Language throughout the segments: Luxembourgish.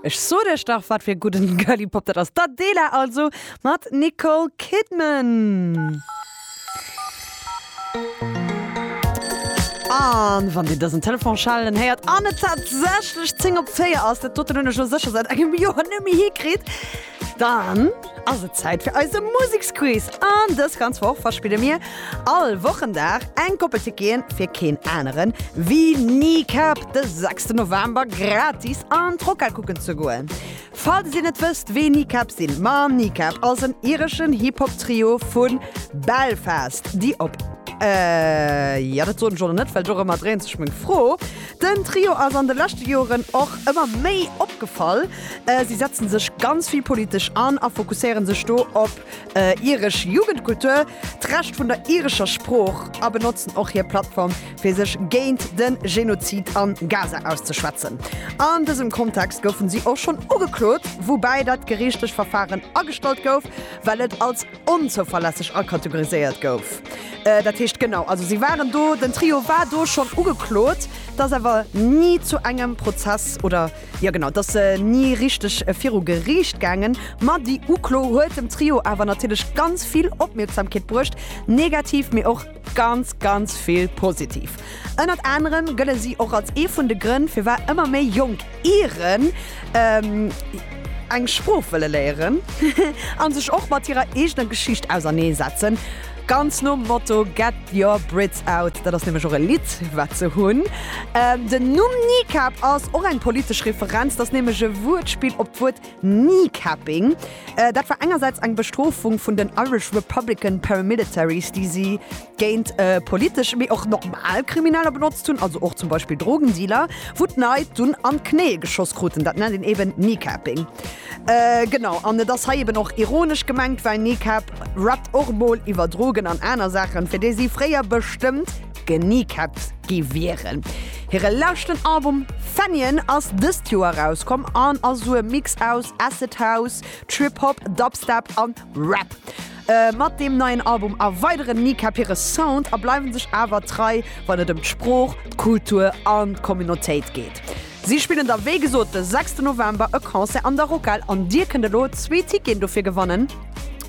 Ech sot iech dach wat fir gudden Girly Pop dat ass, d'Adela also mat Nicole Kidman. An wann dir dësen Telefon schellen héiert an et tatsächlech 10 op 4 ass, dat doten hunn ech elo sécher säit engem Joer net méi hikritt, Dann ass et Zäit fir eise Museksquiz an dës ganz Woch verspille mir all Wochendag eng Koppel Ticketen fir keen aneren ewéi Kneecap de sechste November gratis an d'Rockhal kucken ze goen. Falls dir net wësst wee Kneecap sinn, ma Kneecap ass en ireschen Hip-Hop Trio vu Belfast déi op, jo dat soen ech och nach net well dorëmmer dréint sech meng Fro, Den Trio ass an de leschte Joeren och ëmmer méi opgefall. Si setzen sech ganz vill politesch an a fokusséieren sech do op iresch Jugendkultur, d'Recht vun der irescher Sprooch a benotzen och hir Plattform fir sech géint de Genozid an Gaza auszeschwätzen. An dësem Kontext goufen si och schonn ugeklot, woubäi dat geriichtlech Verfaren agestallt gouf, well et als onzouverlässeg akategoriséiert gouf. Dat heescht, genau, also si waren do, den Trio war do schonn ugeklot, dass awer ni zu engem Prozess oder, jo genau, dass se ni richteg viru Geriicht gaangen. Ma déi Uklo huet dem Trio awer natierlech ganz vill Opmierksamkeet bruecht, negativ, mee och. Ganz, ganz vill positiv. Ënnert anerem gëlle si och als ee vun de Grënn, firwat ëmmer méi jonk Iren eng Sprooch wëlle léieren a sech och mat hirer eegener Geschicht ausernee setzen. Ganz nom Motto Get your Brits out, dat ass nämlech och e Lidd, wat se hunn. Den Numm Kneecap ass och eng politesch Referenz, dat ass nämlech e Wuertspill op d'Wuert Kneecapping, dat war engersäits eng Bestrofung vun den Irish Republican Paramilitaries, déi si géint politesch, mee och normal Krimineller benotzt hunn, also och zum Beispill Drogendealer, wou d'Leit dunn an d'Knéie geschoss kruten. Dat nennt een eben Kneecapping. Genau, an et ass hei eben och ironesch gemengt, well Kneecap rappt och emol iwwer Drogen an aner Saachen, fir déi si fréier bestëmmt D'Kneecaps gi wieren. Hire leschten Album Fenian ass dëst Joer erauskomm an ass esou e Mix aus Acid House, Trip Hop, Dubstep a Rap. Mat deem neien Album erweideren d'Kneecap hire Sound a bleiwe sech awer trei, wann et ëm d'Sprooch, d'Kultur an d'Communautéit geet. Si spillen da wéi gesot de sechste November e Concert an der Rockhal an dir kënnt elo zwee Ticketen dofir gewannen,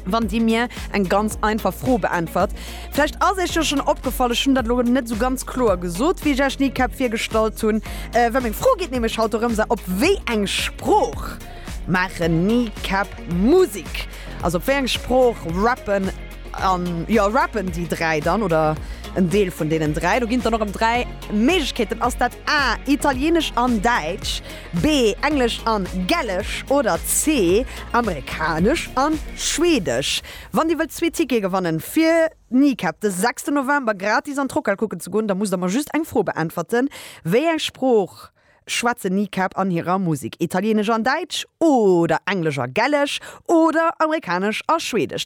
wann dir mir eng ganz einfach Fro beäntwert. Vläicht ass iech jo schonn opgefall, ech hunn dat elo net esou ganz kloer gesot, wéi ech iech Kneecap virgestallt hunn, well meng Fro geet nämlech haut dorëms, a op wéi eng Sprooch maachen Kneecap Musek? Also op wéi eng Sprooch rappen. An jo, rappen déi 3 dann oder en Deel vun deenen 3? Do ginn et dann och erëm 3 Méiglechkeeten, ass dat A, Italienesch an Däitsch, B, Englesch an Gälesch oder C, Amerikanesch an Schwedesch? Wann dir wëllt zwee Tickete gewanne fir Kneecap de 6. November gratis an d'Rockhal kucken ze goen, da musst der mer just eng Fro beäntwerten, Wéi eng Sprooch schwätzen Kneecap an hirer Musek Italienesch an Däitsch oder Englesch a Gälesch oder Amerikanesch a Schwedesch.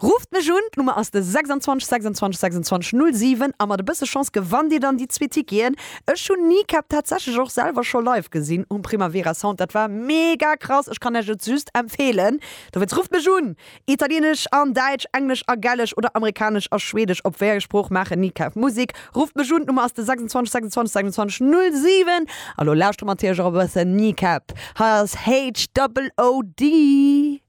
Rufft mech un, d'Nummer ass de 26 26 26 07 a mat e bësse Chance gewannt dir dann déi zwee Ticketen. Ech hunn Kneecap tatsächlech och selwer scho live gesinn um Primavera Sound, dat war mega krass, ech kann Iech et just empfeelen, dowéinst rufft mech un, Italienesch an Däitsch, Englesch a Gälesch oder Amerikanesch a Schwedesch, op wéi enger Sprooch maachen Ni Kaf Musik? Rufft mech un, d'Nummer ass de 26 26 27 07. A lo lauschtere mer natierlech och e bëssen Kneecap. Hei ass HOOD.